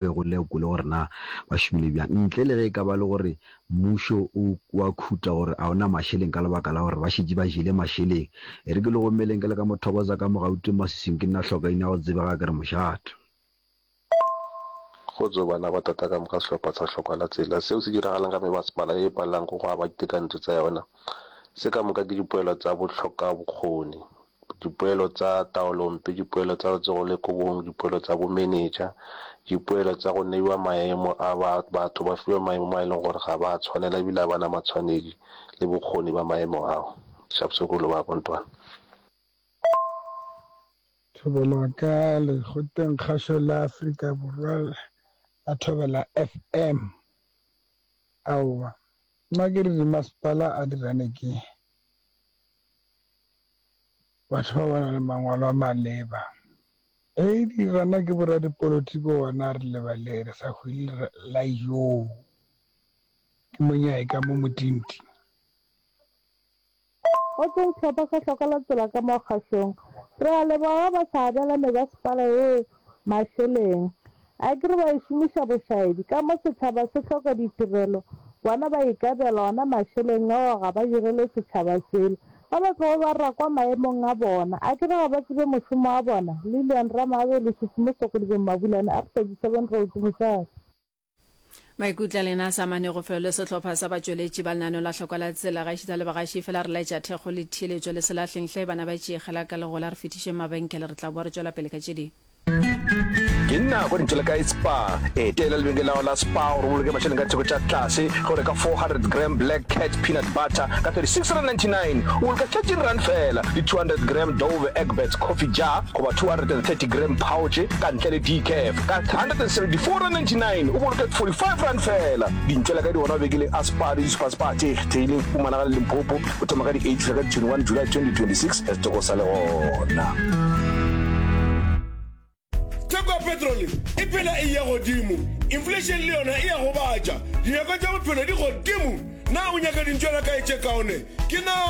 be go lekole gore na ba šomile bjang, ntle le ge e ka ba le gore mmušo o wa khuta gore a o na mašeleng ka lebaka la gore ba šetše ba jele mašeleng. E re ke le gomeleng ke le ka mo thokoza ka mo Gauteng maswiswing ke nna hlokaina go tsebe ga ke re mošate. Kgotso bana ba tata ka moka sehlopha sa hlokwa la tsela seo se diragalang ka mebasepala ye e palelang go go aba ditekanyetšo tsa yona se ka moka ke dipoelo tsa bohlokabokgoni. dipoelo tsa taolompe, dipoelo tsa letsogo le kobong, dipoelo tsa bomenetša, dipoelo tsa go neiwa maemo a ba batho ba fiwa maemo ma e leng gore ga ba a tshwanela ebile a bana matshwanedi le bokgoni ba maemo ao. Shapsukulu ba Bontwana. Thobela ka lekgotleng kgašo la Afrika Borwa la Thobela FM. Aowa, nna ke re dimasepala a di rane ke Batho ba ba na le mangwalo a maleba. Eidi gana ke boradipolotiki gona re lebale re sa hwile re la yoo ke monyai ka mo motinti. Go tšwa sehlopha sa hloka la tsela ka mo kgašong. Re a leboga ba ba sa abela me ba sepala ee. Mašeleng. Akere ba e šomiša bošaedi, ka mo setšhaba se hloka ditirelo, bona ba ikabela ona mašeleng ao ga ba direle setšhaba selo. Ga ba tlogo ba rakwa maemong a bona. Akere ga ba tsebe mošomo wa bona? Lilian Ramaabelo, Susumo Sokgodibe Mmabulane, Arthur Disebeng Rooki, mosadi. Maikutlo a lena a sa amanego felo le sehlopha sa batšweletši ba lenaneo la Hlokwa la Tsela. Gaešita a le bagaši, efela re laetša thekgo le theeletšo le se lahleng hle, bana ba tšee kgela ka legola, re fetišeng mabenkele, re tla boa re tšwela pele ka tše dingwe. Ke nako ya dintho le kae Spar. Etela lebenkele la gago la Spar gore o boloke mašeleng ka theko tša tlase ge o reka 400 gram Black Cat peanut butter ka 36.99 o boloka 13 rand fela le 200 gram Dove Egbert coffee jar goba 230 gram pouch ka ntle le decaf. Ka R174.99 o boloke R45 fela. Dintšwela ka di gona mabekeleng a Spar le di-Super Spar tše kgethegileng go humanaga le Limpopo go thoma ka di 8 fihla ka di 21 July 2026 ge setoko sa le gona. theko ya petrole e phela e ya godimo inflation le yona e ya gobatša dinyako tša bophelo di godimo na o nyaka dintšwela kae tše kaone ke na